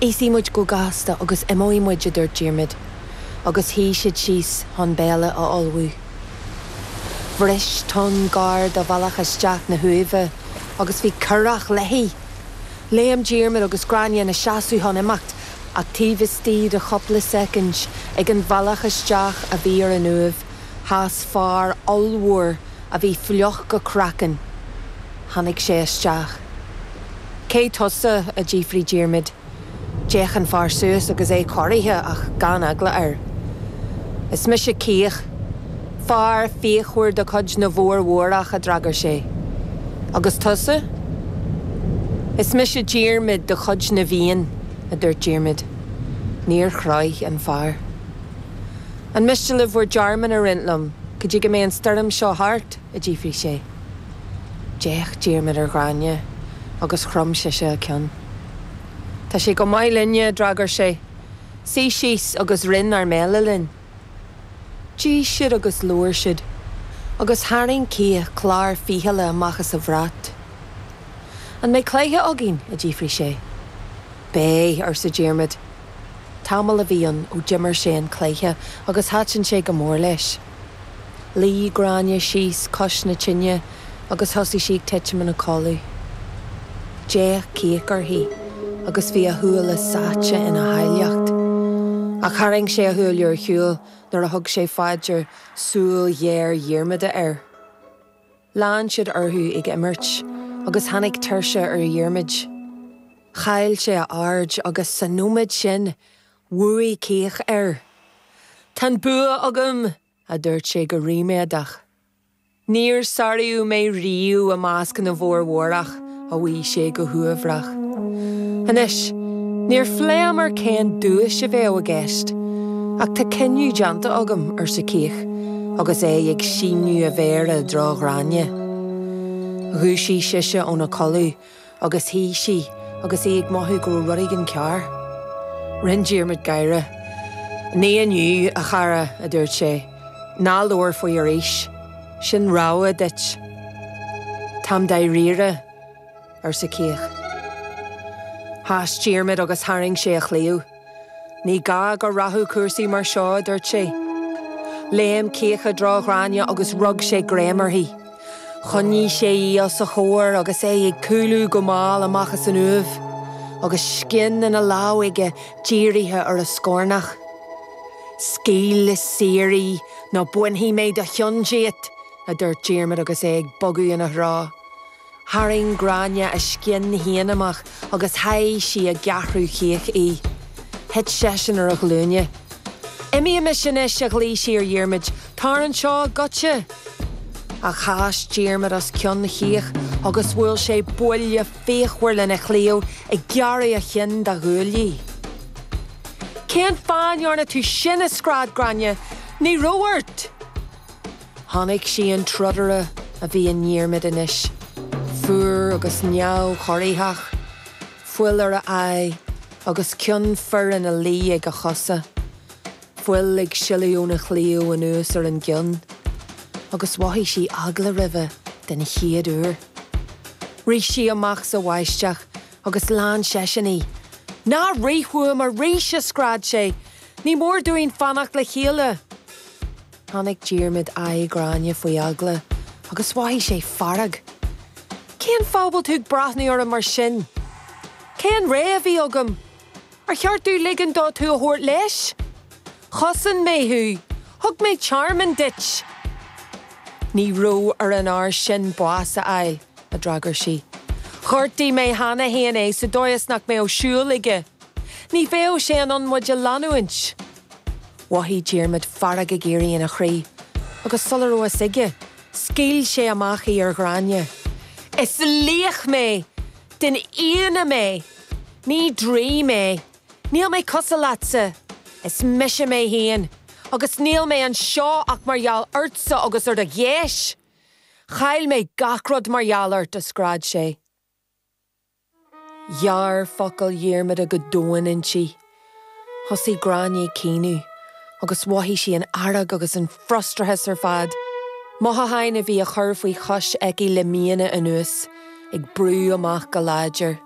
Íosfaidh muid go gasta agus imeoidh muid, a dúirt Diarmaid, agus shuigh siad síos chun béile a ullmhú. Bhris tonn gar do bhealach isteach na huaimhe agus bhí curach léi. Léim Diarmaid agus Gráinne ina seasamh chun imeacht, ach taobh istigh de chúpla soicind, ag an bhealach isteach a bhí ar an uaimh, sheas fear ollmhór, a bhí fliuch go craiceann. Tháinig sé isteach. Cé tusa? a d'fhiafraigh Diarmaid. D'fhéach an fear suas agus é corraithe ach gan eagla air. Is mise Ciach, fear fíochmhar de chuid na bhFomhórach, a d'fhreagair sé. Agus tusa? Is mise Diarmaid de chuid na bhFiann, a dúirt Diarmaid. Níor chroith an fear. An miste libh bhur dtearmann a roinnt liom go dtí go mbeidh an stoirm seo thart? a d'fhiafraigh sé. D'fhéach Diarmaid ar Ghráinne agus chrom sise a ceann. Tá sé go maith linne, a d'fhreagair sé. Suigh síos agus roinn ár mbéile linn. D'ith siad agus labhair siad, agus tharraing Ciach clár fichille amach as a bhrat. An mbeidh cluiche againn? a d'fhiafraigh sé. Beidh, arsa Diarmaid. Tamall a bhí ann ó d'imir sé an cluiche agus thaitin sé go mór leis. Luigh Gráinne síos cois na tine agus thosaigh sí ag titim ina codladh. D'fhéach Ciach uirthi agus bhí a shúile sáite ina háilleacht. Ach tharraing sé a shúile ar shiúl nuair a thug sé fá dear súil ghéar Dhiarmada air. Lean siad orthu ag imirt agus tháinig tuirse ar Dhiarmaid. Chaill sé a aird agus sa nóiméad sin bhuaigh Ciach air. Tá an bua agam, a dúirt sé go ríméadach. Níor sáraíodh mé riamh i measc na bhFomhórach. a mhaígh sé go huaibhreach. Anois, níor phléamar cén duais a bheadh i gceist, ach tá cinneadh déanta agam, arsa Ciach, agus é ag síneadh a mhéar i dtreo Ghráinne. Dhúisigh sise óna codladh agus shuigh sí agus í ag mothú go raibh rud éigin cearr. Rinne Diarmaid gáire. Ní inniu, a chara, a dúirt sé. Ná labhair faoi arís, sin rabhadh duit. Táim dáiríre, arsa Ciach. Chas Diarmaid agus tharraing sé a chlaíomh. Ní gá go rachadh cúrsaí mar seo, a dúirt sé. Léim Ciach i dtreo Ghráinne agus rug sé greim uirthi. Choinnigh sé í os a chomhair agus é ag cúlú go mall amach as an uaimh, agus scian ina lámh aige dírithe ar a scornach. Scaoil í saor í nó bainfidh mé do cheann díot! a dúirt Diarmaid agus é ag bogadh ina threo. Tharraing Gráinne a scian féin amach agus sháigh sí i gceathrú Chíoch í. Thit seisean ar a ghlúine. Imímis anois! a ghlaoigh sí ar Dhiarmaid. Tar anseo! Goitse! Chas Diarmaid os cionn Chíoch agus bhuail sé buille fíochmhar lena chlaíomh ag gearradh a chinn dá ghuaillí. Cén fáth a ndearna tú sin, a scread Gráinne? Ní raibh ort! Chonaic sí an trodaire a bhí i nDiarmaid anois, fuar agus neamhchorraithe, fuil ar a aghaidh agus cionn fir ina luí ag a chosa, fuil ag sileadh óna chlaíomh anuas ar an gcionn, agus mhothaigh sí eagla roimhe den chéad uair. Rith sí amach sa mbáisteach agus lean seisean í. Ná rith uaim arís, a scread sé, ní mór dúinn fanacht le chéile. Chonaic Diarmaid aghaidh Ghráinne faoi eagla agus mhothaigh sé fearg. Cén fáth a bhfuil tú ag breathnú orm mar sin? Cén rogha a bhí agam? Ar cheart dom ligean dó tú a thabhairt leis? Chosain mé thú, thug mé tearmann duit. Ní raibh ar an fhear sin bás a fháil. a d'fhreagair sí. Ghortaigh mé cheana féin é sa dóigh is nach mbeadh siúl aige. Ní bheadh sé in ann muid a leanúint. Mhothaigh Diarmaid fearg ag éirí ina chroí agus sula raibh a fhios aige, scaoil sé amach í ar Ghráinne. Is laoch mé! Den Fhianna mé! Ní draoi mé! Níl mé cosúil leatsa! Is mise mé féin! Agus níl mé anseo ach mar gheall ortsa agus ar do gheis! Chaill mé gach rud mar gheall ort, a scread sé. Ghearr focail Dhiarmada go domhain inti. Thosaigh Gráinne ag caoineadh agus mhothaigh sí an fhearg agus an frustrachas ar fad. Mothúcháin a bhí curtha faoi chois aici le míonna anuas, ag brú amach go láidir.